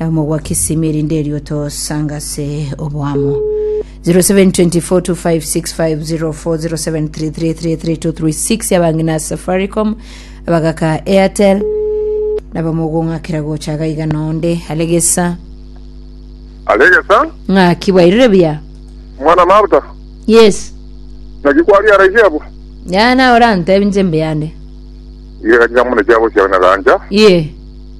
Nabo mogwaki simi erinde erio tosanga ase oboamo 072425650407333336 yabang'ina ase safaricom abagaka airtel nabo mogong'akera gocha iga iga nonde alegesa alegesa ng'aki bwairire buya mwana mabuta yes naki kwari araisi abo ya nawe orantebinche mbe yande igega chiamune chiagosia na ganja ye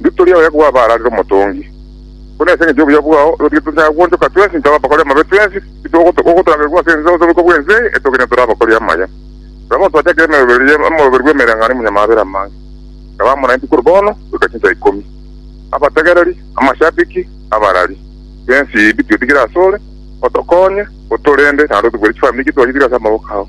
Nditoria oye kwaba ararire omotongi. Buna ase engencho y'obuya bwao igo titonchanga goonchoka twensi intwe abakori amabe twensi, titogoturagerigwa ase ense gose okobua ense eye, etogende tore abakori amaya. Rora bono twachakire emeroberio ya omoroberio bw'emereng'anio imwe nyamabera amange, ekaba amo naintwe korwa bono goika chinsa ikomi. Abategereri, amashabiki, abarari, twensi bituetigire asore, otokonye, otorinde, naende otobwerie chifamiri chitwachire ase amaboko ao.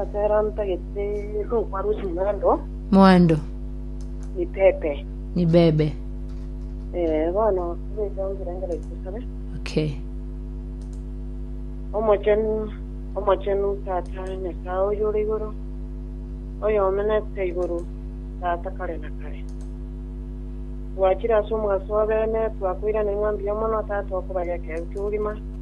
Asera ntagete rokwa rusi mwando. Mwando. Ni pepe. Ni bebe. Eh, bono bweka ngira ngera ikusabe. Okay. Omochenu, omochenu tata nyasaye oyo ore igoro. Oyo omenete igoro tata kare na kare. Twachire ase omogaso wa bene, twakoirana ing'a mbuya mono tata okobageka ebuke bugima.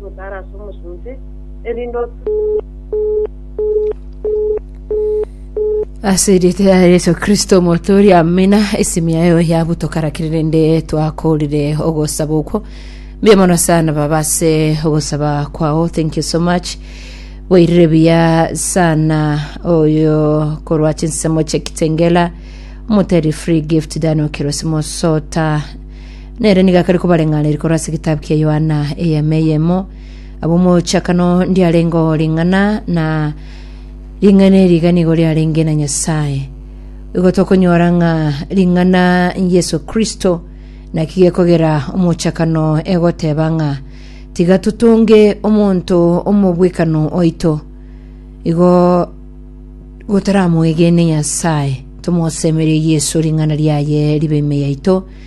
gotara ase omosunte, erinde otunyare Ase erieta ya Yeso Kristo omotooria, amina. Esimi yayo yabu tokarakire rende twakoorire ogosaba okwo. Mbuya mono sana baba ase ogosaba kwao. Thank you so much. Bwairire buya sana oyo korwa chinsemo chie Kitengela. Omoteri free gift Daniel Kirosi Mosota. Nere nigo akare kobareng'ana eri korwa ase egetabu kia Yohana eyemo eyemo. Ab'omochakano ndiarenge oo ring'ana na ring'ana eri iga nigo riarenge na Nyasae. Igo tokonyora ng'a ring'ana Yeso Kristo naki gekogera omochakano egoteba ng'a tiga totonge omonto omobwekano oito igo gotaramwegene Nyasae, tomosemerie Yeso ring'ana riaye ribe ime yaito,